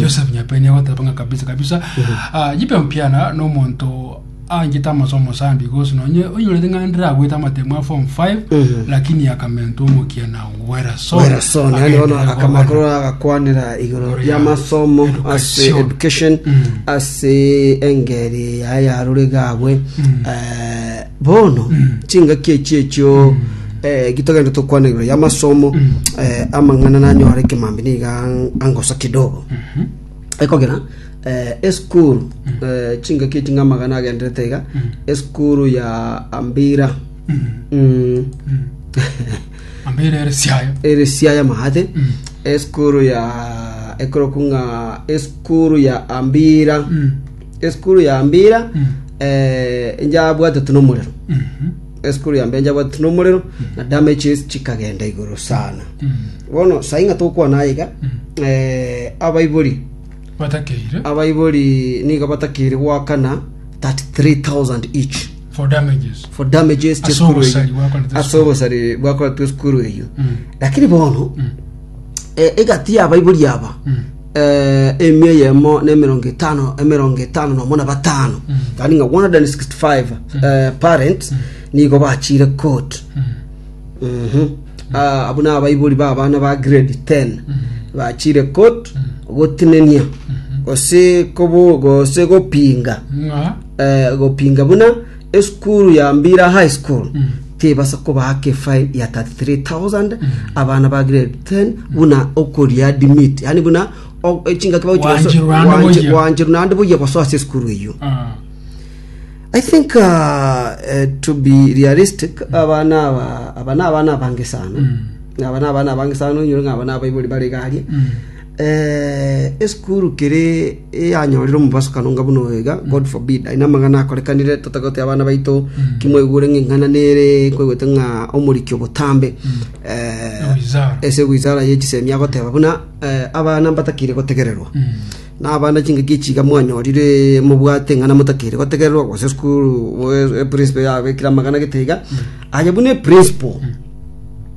Joseph Nyapeni agoteba ng'a kabisa kabisa ah, Jipe Mpiana nomonto anchete amasomo mosambi gosi nonye onyorete ng'a ndiragwete amatemo ya form 5 lakini akamentwa omokiana Werrason Werrason yani bono agenderere akamakoro kogana. agakwanera igoro Igoro ya ya masomo ase education. education Mm. ase engeri yaye yarure gabwe eh, Bono chingaki echi echio gitogenda tokwana igoro y'amasomo amang'ana nanyore ekemambe niga angosa kidogo. Ekogera esukuru chingaki echi ng'a amagana agenderete iga esukuru ya Ambira Ambira ere Siaya. ere Siaya Maate esukuru ya ekorokwa ng'a esukuru ya Ambira Esukuru ya mbira eh, njabwatete nomorero esukuru ya mbira njabwatete nomorero na damages chikagenda igoro sana bono sai ng'a tokwana aiga eh, abaibori batakeire abaibori niga batakiri gwakana 33000 each for damages for damages Ase chesukuru obosari bwakoretwe ase esukuru. obosari bwakoretwe esukuru eyo Mm. lakini bono Mm. eh, egati ya abaibori aba Mm. emia eyemo na emerongo etano emerongo etano nomo na batano yaani ng'a 165 eh, parent nigo bachire court Mhm. Ah, abwo na abaibori ba abana ba grade 10 bachire court gotinenia gose kobo gose gopinga ng'a eh, gopinga buna Esukuru ya Mbira High School tebasa kobaaka efine ya 33,000 abana ba grade 10 buna okoria dimit yani buna o- echingaki bagochi goso- Gwanchirwa ande gwanchi- boyia. gwanchirwa naende boyia gosoa ase esukuru eyio Ah. I think uh, uh, to be realistic abana aba abana abana abange sana aba na abana abange sana onyore ng'a aba na abaibori bare igaria Esukuru kere eyanyorire omobasukano onga buna oyo iga, God forbid! Aye namang'ana akorekanire, totagote abana baito ki mwaigure ng'a ing'ana nere nkoigwete ng'a omoriki o botambe eh, Ewizara. ase ewizara ye chisemi agoteba buna eh, abana mbatakeire gotegererwa na abana chingaki echi iga mwanyorire mobwate ng'ana motakeire gotegererwa gose esukuru eh, eprincipo yabekire amang'ana gete iga aye buna eprincipo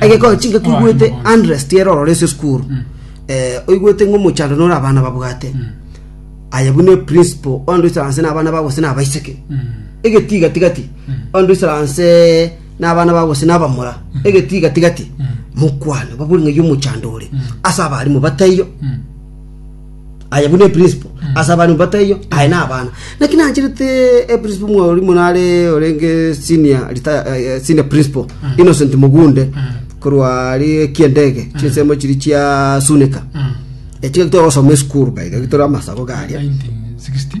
Egekoo chinga koigwete Andres tiere ororo ase esukuru mm. eh, oigwete ng'a omochando nore abana babwate mm. aye buna eprinciple ondo isaranse na abana bagose na abaiseke mm. egetiga tigati ondo isaranse na abana bagose na abamura egetiga tigati mokwane babori ng'a yo omochando ore ase abarimu bataiyo Aye buna eprisipo ase abana mbato eyio, aye na abana. Naki nacherete eprisipo mwauri mono are orenge senior retire- eh, eh, senior principal Innocent Mugunde korwa ari ekiendege chinsemo chiri chia Sunika. Echi gaki togosoma esukuru gaiga gitore amasabo garia. 1960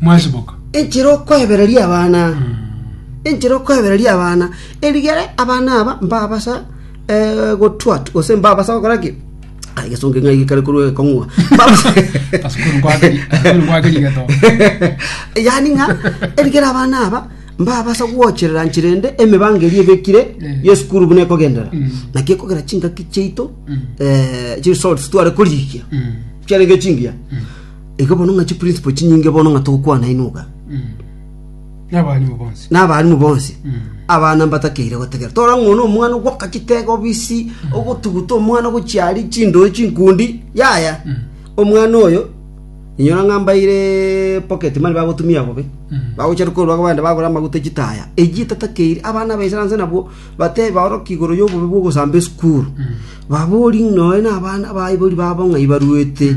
mwasiboka. Enchera okoebereria abana, enchera okoebereria abana, erigere abana aba mbabasa eh, gotwat gose mbabasa gokora ki Ai, gesonge ng'a gikare korwa ekong'wa Mbabasa- Asukuru kwakeri, asukuru kwakeri geto. yani ng'a erigere abana aba mbabasa gwocherera nchera ende emibango eria ebekire Mm. yesukuru buna ekogendera Mm. naki ekogera chingaki chiaito eh, chiresults tware korigia Mm. chiarenge chingiya Igo bono ng'a chiprinciple chinyinge bono ng'a togokwana inwe iga, N'abarimu bonsi. n'abarimu bonsi abana mbatakeire gotegera tore ng'a one omwana ogwaka chitega obisi ogotuguta omwana ogochiari chindoi chinkundi yaya omwana oyo inyora ng'a mbaire pocket money bagotumia bobe bagochia korwa aba bande bagora amaguta echitaya eyio etatakeire abana aba insurance nabwo batebe baoroke igoro y'obobe bw'ogosamba esukuru babori nonya na abana abaibori babo ng'a ibaruete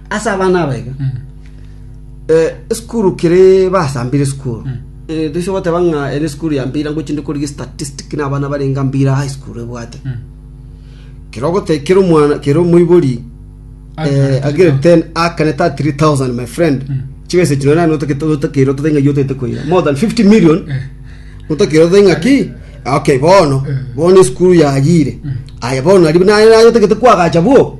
Ase abana abaiga esukuru kere basambire esukuru toiso goteba ng'a ere esukuru ya mpira ngochi ndi korigia statistic na abana barenga mpira high school ebwate kero ogote kero omwana kero omoibori eh, agere 10 akaneta 3000 my friend chibese chino nani otakete otakire otatenga yo otete koira more than 50 million otakire otenga ki okay bono bono esukuru yagire aya bono ari naye naye otakete kwagacha bwo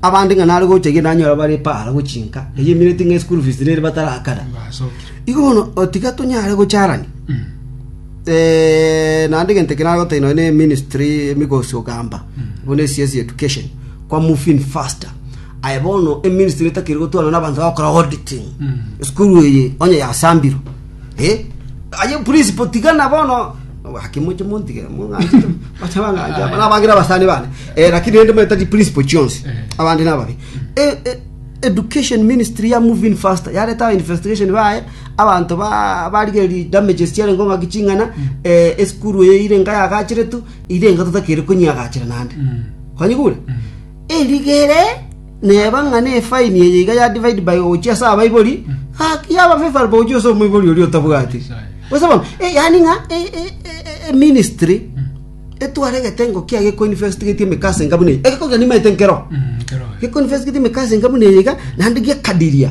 Abande ng'a nare gocha erio nanyore abare epaara gochinka, eyio emineti ng'a eschool fees nere batarakana. Igo bono otiga tonyare gocharania. Eh, naende egento eke nare gotebia nonya na eministry emigosi ogamba, buna esiasi ya education, kwa move in faster. Aye bono eministry etakiri gotwarana na abanto bagokora auditing, esukuru eye onye yasambirwe. Eh, aye principal tiga na bono Gaki moche montige mong'anchete bacha bang'ancha aba nabagire abasani bane eh, lakini rende manyete principle chionsi abandi nababi Eh, eh, education ministry ya moving faster yareta aba investigation baye abanto ba- barigeri damages chiare ngo ng'aki ching'ana eh, esukuru eye ire nga yagachiretu ire nga totakere konyiagachira nande kwanyigure Erigere, neba ng'a nefaini eye iga ya divaidi by gochia ase abaibori, gaki yaba favourable gochia ase omoibori oria otabwati. Gose bono, eh, yaani ng'a e- e- e- e- eministry etware egetengo kiaye gekoinvestigeti emekasa enga buna eye. Egekogera nimaete nkero, gekoinvestigeti emekasa enga buna eye iga, naende giakadiria.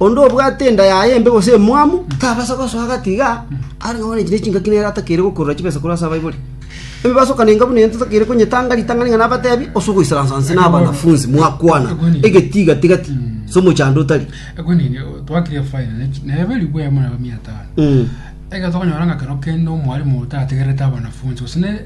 Onde obwate enda yaye embe gose emwamu, tabasa gosoa gati iga are ng'a one chire chingaki nere atakeire gokurora chibesa korwa ase abaibori. Emebaso kane engabu neyo totakeire konyetanga ritang'ani ng'a nabatebi, ase ogoisaransa inse na abanafunsi mwakwana egetiga tigati ase omochando otari. Ekwe nini twakire fine ne nebe ribu ya muna mia tano Mm. egento okonyora ng'a kero kende omwarimu otategerete abanafunsi gose ne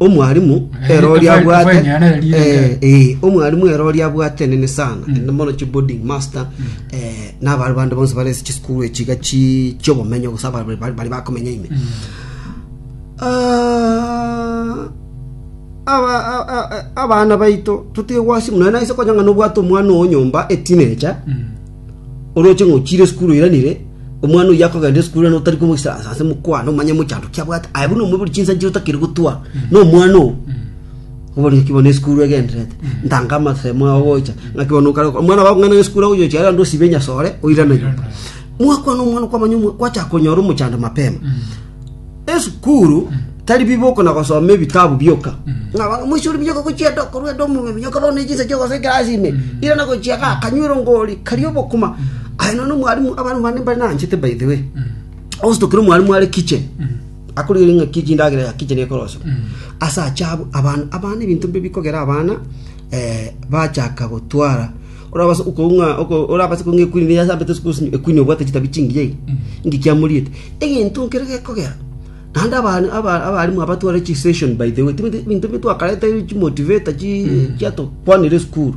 Omwarimu Eh, ero oria tofauti abwate kwenye na erire eh, ngero. eh, omwarimu ero oria abwate nene sana ende mono chi boarding master eh, nabare bande bonse bare ase chisukuru echiga chi- chiobomenyo gose abare bari- bari bari bakomenya ime Ah, aba- a- a- a- abana baito totige gwasi muna naise konya ng'a nobwate omwana oo nyomba etinecha Mm. oroche ng'a ochiire esukuru oiranire, omwana oyio akogenda esukuru naende otari komoisa ase ase mokwana omanye mochando ki abwate, aye buna omobe ore chinsa nchire otakiri gotwa na omwana oo. Obono naki bono esukuru egendererete, ntanga amasemo ao gocha, naki bono okare gokora, omwana bakong'aina ng'a esukuru agochia gochia naende osibe enyasore oirane nyomba. Mwakwana omwana okwamanya omo- kwachaka konyora omochando mapema. esukuru tari biboko na gosoma ebitabu bioka ng'a abana moisore bioka gochia ande okorwa ande omong'ina buna okaba ne chinsa chi'ogosoa ekerasi ime ira na gochia iga akanywera ngori karia obokima aye nonya na omwalimu abana bane mbare nanchete by the way ogositokera omwalimu are kitchen akorigereria ng'a ki chindagera ya kitchen ekoroswa ase ache abwo abana abana ebinto mbire bikogera abana eh, bachaka gotwara Orabase okounga oko orabase kounga ekwini niye asambete ase kosimi ekwini obwate chitabi chingiya iga, inki kiamoriete? Egento nkere gekogera. Naende abana aba abarimu abatware chi session by the way, tibeti ebinto bi twakarete chi motivator chi chiatokwanire esukuru.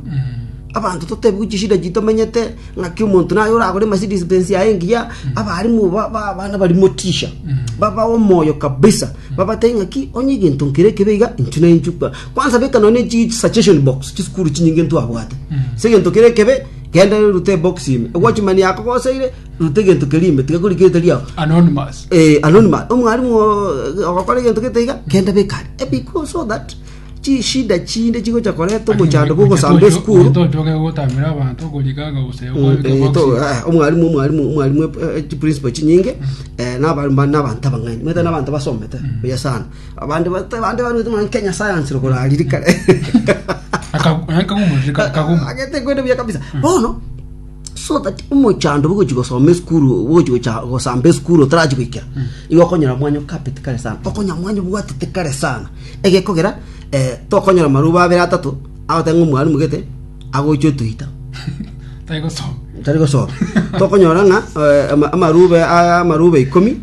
Abanto totebiwe chishida chitomenyete, ng'aki omonto naye oragore Mercedes Benz yaye engiya, abarimu ba ba abana bari motisha, babae omoyo kabisa, babatebie ng'aki onye egento nkere ekebe iga, inchuo nainchuo kwa. Kwansa beka nonya ne chi suggestion box chisukuru chinyinge ntwabwate ase egento kere ekebe genda rute ebox ime egwachi mani yakogoseire rute egento keria ime tiga korikire tari ao anonymous eh, anonymous omwalimu oo, ogokora egento gete iga genda beka are Eh, because so that chishida chinde chigocha koreta omochando bwa ogosamba esukuru tochoke gotamera abanto korika gose Mm, eh, to- ah, omwalimu omwalimu omwalimu eh, eh, chiprinciple chinyinge eh, naba- ba- nabanto abang'aini omanyete nabanto basomete buya sana Abande ba- abande baruete muna Kenya Science rokoro ariri kare. Aka- eh, kaguma, reka- kaguma. Agete kwende buya kabisa. Bono so that omochando bogochi gosoma esukuru bogochi gocha- gosamba esukuru otarachi goikera igo okonyora mwanyo kapeti kare sana okonya mwanyo bwatete kare sana egekogera eh, tokonyora maruba abere atato agoteba ng'a omwalimu gete agochia otoita Tari gosoma. tari gosoma tokonyora ng'a eh, ama- amarube aya amarube ikomi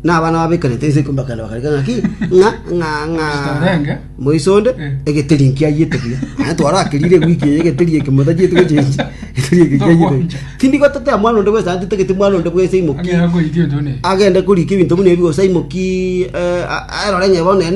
na abana babekanete ense ikomi bakana bakareka ng'aki ng'a ng'a ng'a Torenge. moisonde Eh. egeteri nkiayete buya aya twarakerire wiki eye egeteri eke motajete gochenji egeteri eke kiayete Tokwanja. tindi gotatea mwana onde bwesa atitagete mwana onde bwesa imoki Ang'era koitia otone. agende korika ebinto buna ebigo saimoki erore ng'e bono ene